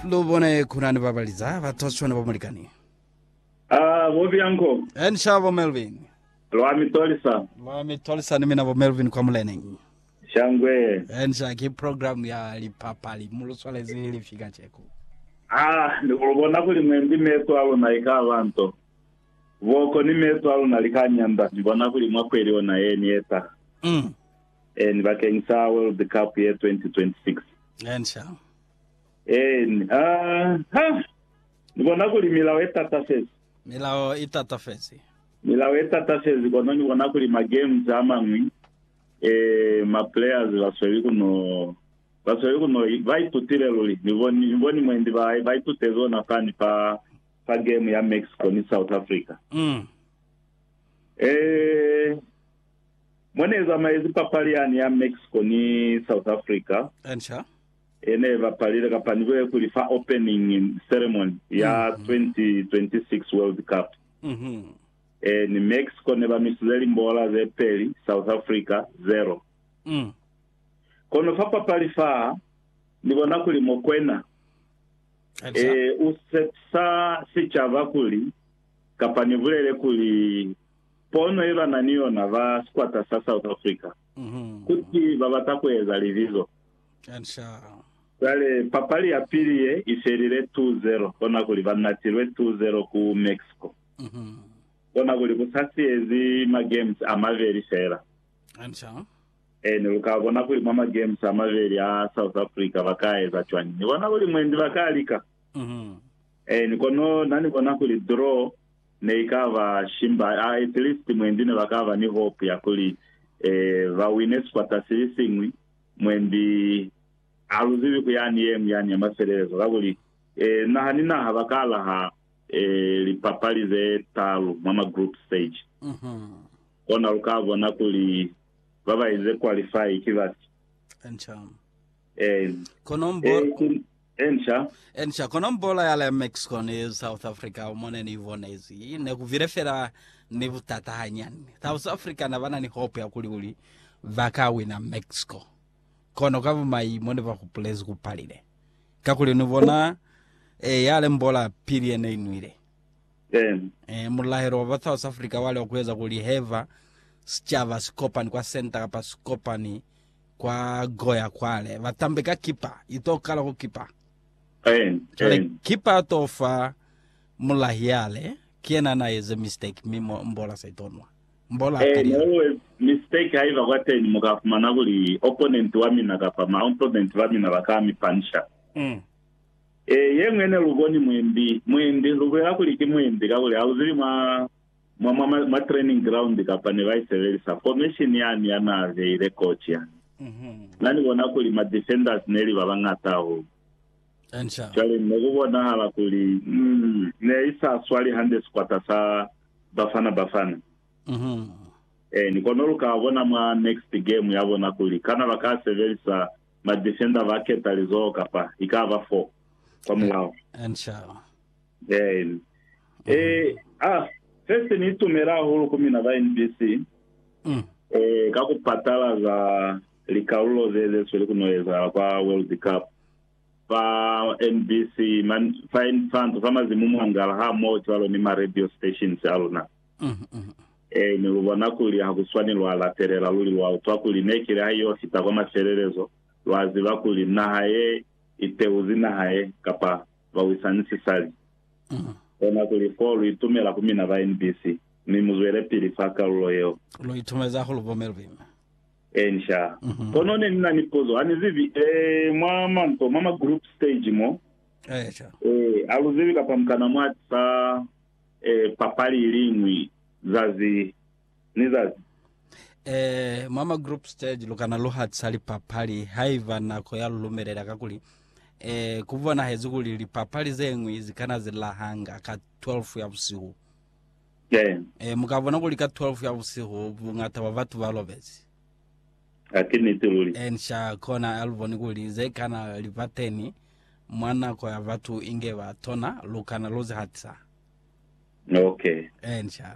Lu bone kunani ba baliza ba Toshwana ba Mulikani. Ah, bo Bianco, En sha bo Melvin. lwa mi tolisa. Lwa mi tolisa ni mina bo Melvin kwa muleneng. Shangwe. En sha ki program ya lipapali mu lu swalezi li fi kaceko. Ah, ni ku lu bona kuli mwendi meso a luna i ka ba nto. Boko ni meso a luna li ka nyanda. Ni bona kuli mwa kweli ona ye ni eta. Mm. Eeni, bakeng sa World Cup ye 2026. Eeni, sha. Eeni, ha, ha! Ni bona kuli milao e tatafezi. Milao i tatafezi. Milao e tatafezi, kono ni bona kuli ma games a mañwi, eh, ma players ba sweli ku no, ba sweli ku no, ba itutile luli. Ni boni, ni boni mwendi ba, ba itutezi ona fani fa, fa game ya Mexico ni South Africa. Mm. Eh. Mo ne zamaezi papali yani ya Mexico ni South Africa, e ne bapalile kapa ni be kuli fa opening ceremony ya 2026 World Cup. E ni Mexico ne ba nwisize limbola ze peli, South Africa, 0. Kono fa papali fa, ni bona kuli Mokwena e u sepisa sicaba kuli, kapa ni bulele kuli, Pono ye ba na ni yona ba sikwata sa South Africa ku ti ba bata ku eza libizo. Cwale papali ya pili ye i felile 2-0, kona kuli ba natilwe 2-0 ku Mexico. Kona kuli ku sa siyezi ma games a mabeli feela. Ene lu ka bona kuli mwa ma games a mabeli a South Africa ba ka eza cwañi. Ni bona kuli mwendi ba ka lika. Ene kono na ni bona kuli draw. Neikaba shimba, a at least mwendi nebakaba ni hope ya kuli ba wine sikwata silisiñwi. Mwendi haluzibi ku yani yeñwi yani ya mafelelezo, kakuli naha ni naha baka laha lipapali ze talu mwa ma group stage. Kona luka bona kuli babaize qualify ki bafi. Kono mbo, Ensha. Ensha, kono mbola ya le Mexico ni South Africa mo ne ni bonezi, ne ku bile fela ni butata hanyani. South Africa ne ba na ni hope ya kuli kuli ba ka wina Mexico. Kono ka bumai mo ne ba hupulezi ku palile. Kakuli ni bona, eh, ya le mbola pili ye ne i nwile. Eh, mulahelo wa ba South Africa wa li wa ku eza kuli heba sicaba si kopani kwa senta kapa si kopani Kwa Goya kwale ba tambe ka kipa ito kala ku kipa. Cwale kipa ato fa mulahi yale ki yena na eze mistake mi mbola sa ito nwa. Mbola a peli yale. Mistake haiba kwateñi mu ka fumana kuli opponent wa mina kapa ma opponent ba mina ba ka mi punisha. Yeñwi yene lu boni muimbi, muimbi, lu bulela kuli ki muimbi kakuli ha lu zibi mwa mwa, mwa, mwa training ground kapa ne ba isebelisa formation yani ya na beile coach ya. Na ni bona kuli ma defenders neli ba bañata hahulu. Enca. Cwale ne ku bonahala kuli mm, ne i sa swali hande sikwata sa Bafana Bafana. Eh, ni kono lu ka bona mwa next game ya bona kuli kana ba ka sebelisa ma defender ba keta lizoho kapa i ka ba four kwa mulao. Enca. Amen. Eh, ah, first ni itumela hahulu ku mina ba NBC. Mm. Eh, ka ku patala za likalulo ze ze sweli kuno ezahala kwa World Cup. Fa NBC, man, fa Infanto, fa mazimu mwangala ha mo cwalo ni ma radio stations a luna. Mm. Mm. Eh, ni lu bona kuli ha ku swani lwa latelela luli lwa utwa kuli ne kile ha yo fita kwa mafelelezo, lwa ziba kuli naha ye iteuzi naha ye kapa ba wisa ni sisali. Kona kuli, Ko lu itumela ku mina ba NBC, mi mu zwelepili fa kalulo yeo. Lu itumeza hahulu bo Mme Lubimbi. Encia. Kono ne ni na ni puzo, ha ni zibi, eh, mwa manto, mwa ma group stage mo. Eeca. Eh, ha lu zibi, kapa mukana mwati fa, eh, papali iliñwi, zazi, ni zazi. Eh, mwa ma group stage lu kana lu hatisa lipapali haiba nako ya lu lumelela kakuli eh ku bonahezi kuli lipapali ze ngwi zi kana zi lahanga ka 12 ya busihu. Eh, Eh, mu ka bona kuli ka 12 ya busihu bungata bwa batu ba lobezi. ha ke niti luli. Eh, nsha kona a lu boni kuli ze kana li ba teni mwa nako ya batu inge ba tona lu kana lu zi hatisa. Okay. Eh, nsha.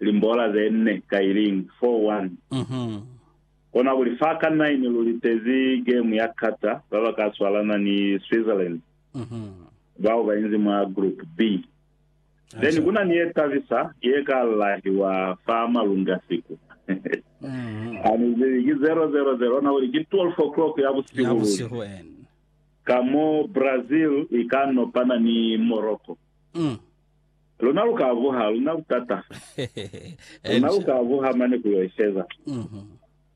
limbola ze nne ka iling, 4-1. Kona kuli fa ka nine lu litezi game ya kata ba ba ka swalana ni Switzerland, bao ba inzi mwa Group B. Then kuna ni ye tabisa ye ka lahiwa fa malunga siku. Ha ni zibi ki 0-0 ze lona kuli ki 12 o'clock ya busihu luli, ka mo Brazil i ka nopana ni Morocco. Luna lu ka vuha, luna butata. Luna lu ka vuha mane ku yo isheza.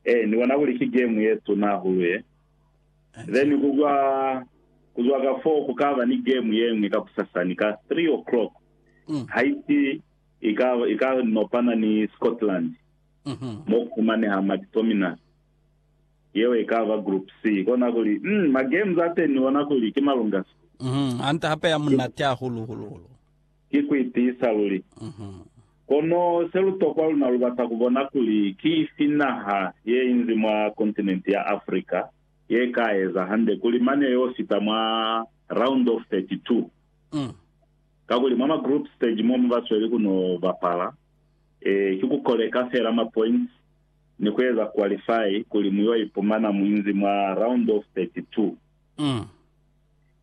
Ee, ni bona kuli ki gemu ye tuna hahulu ye. Then ku zwa, ku zwa ka foo ku ka ba ni gemu ye ñwi kakusasani ka three o'clock. Haiti i ka, i ka nopana ni Scotland, mo ku fumaneha Mac Tominay. Yeo ikaba Group C. Kona kuli, mm, ma games ateni ni bona kuli ki malunga sbu. Mhm. Hande hape ya munati hahulu hulu hulu. Ki ku itiisa luli. Mhm. Kono se lu tokwa luna lu bata ku bona kuli ki ifi naha ye inzi mwa kontinenti ya Africa ye ka eza hande kuli mane yo fita mwa round of 32. Mm. Kakuli mwa ma group stage mo mu ba sweli ku no bapala, eh, ki ku koleka fela ma points. ni ku eza qualify kuli mu yo ipumana mu inzi mwa round of 32.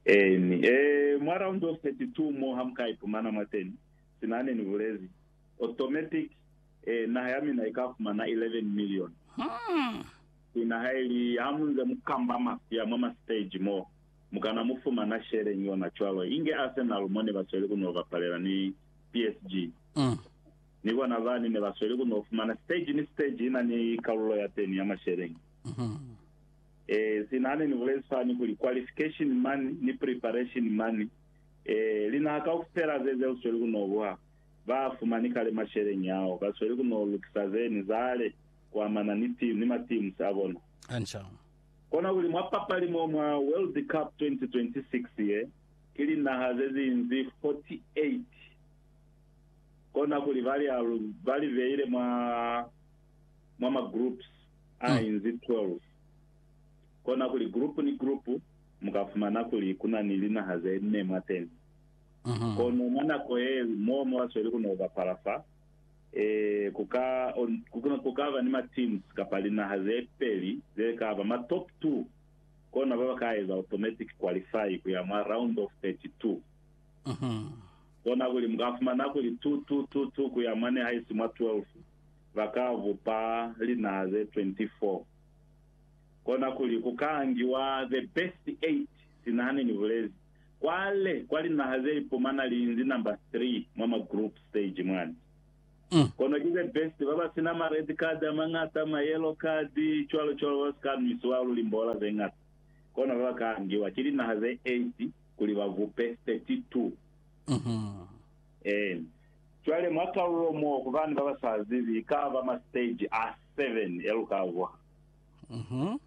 Eeni, ee, mwa round of 32 mo ha mu ka ipumana mwateni, sina ne ni bulezi, automatic, ee, naha ya mina i ka fumana 11 million. Sina ha i li, ha mu nze mu kamba mafya mwa ma stage mo, mu kana mu fumana share ni yona cwalo, inge Arsenal mo ne ba sweli ku no bapalela ni PSG. ni bona bani ne ba sweli ku n'o fumana. Stage ni stage i na ni kalulo ya teni ya masheleñi. Eh, sina hane ni bulezi fani kuli qualification mani ni preparation mani, eh, linaha kaufela ze ze usweli ku n'o buha, ba a fumani kale masheleñi ao. Ba sweli ku n'o lukisa ze ni zale kuamana ni team, ni ma teams a bona. Hanca. Kona kuli mwa papali mo mwa World Cup 2026 ye, ki linaha ze zinzi 48. kona kuli ba li alu, ba li beile mwa, mwa ma groups a inzi 12. Kona kuli group ni group mu ka fumana kuli ku na ni linaha ze nne mwateni. Kono mwa nako ye li mo mu ka sweli ku no bapala fa, ee, ku ka, ku, ku ka ba ni ma teams kapa linaha ze peli ze ka ba ma top two, kona ba ba ka eza automatic qualify ku ya mwa round of 32. Kona kuli mu ka fumana kuli tu, tu, tu, tu ku ya mane haisi mwa 12, ba ka bupa linaa ze 24. Kona kuli ku ka ngiwa the best eight, sina hane ni bulezi. Kwale, kwa linaha ze ipumana li inzi number three mwa ma group stage mwani. Kono ki the best, ba ba sina ma red card a mañata, ma yellow card, cwalo cwalo, ba si ka nwisiwa luli mbola ze ñata. Kona ba ba ka ngiwa ki linaha ze eight. kuli ba bupe 32. Ee. Cwale mwa kalulo moo ku bani baba sa zibi, ka ba ma stage a 7 ya lu ka vuha.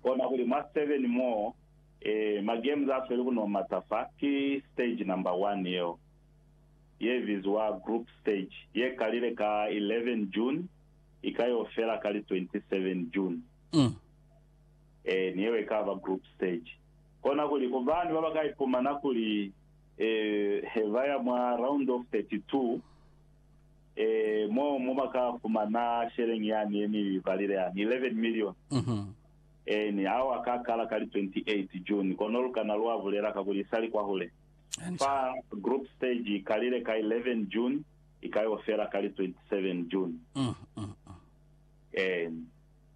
Kona kuli mwa 7 moo, ee, ma games a sweli ku no mata fa, ki stage number 1 yeo, ye bizwa group stage, ye kalile ka 11 June, i ka yo fela ka li 27 June. Ee, ni yeo e ka ba group stage. Kona kuli, Ku bani baba ka ipumana kuli he ba ya mwa Round of 32, mo mo ba ka fumana sheleñi yani ye ni balile yani, 11 milioni? Eeni, ao a ka kala ka li 28 June, kono lu kana lwa bulela kakuli i sa li kwahule. Fa group stage i kalile ka 11 June, i ka yo fela ka li 27 June. Eeni.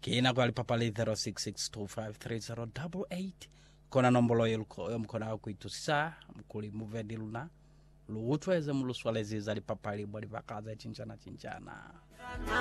Ki nako ya lipapali 0662530888 kona nombolo ye luko yo mukona ku itusisa kuli muve ni luna lu utwe ze mu lu swalezi za lipapali mwa libaka ze cinjana cinjana.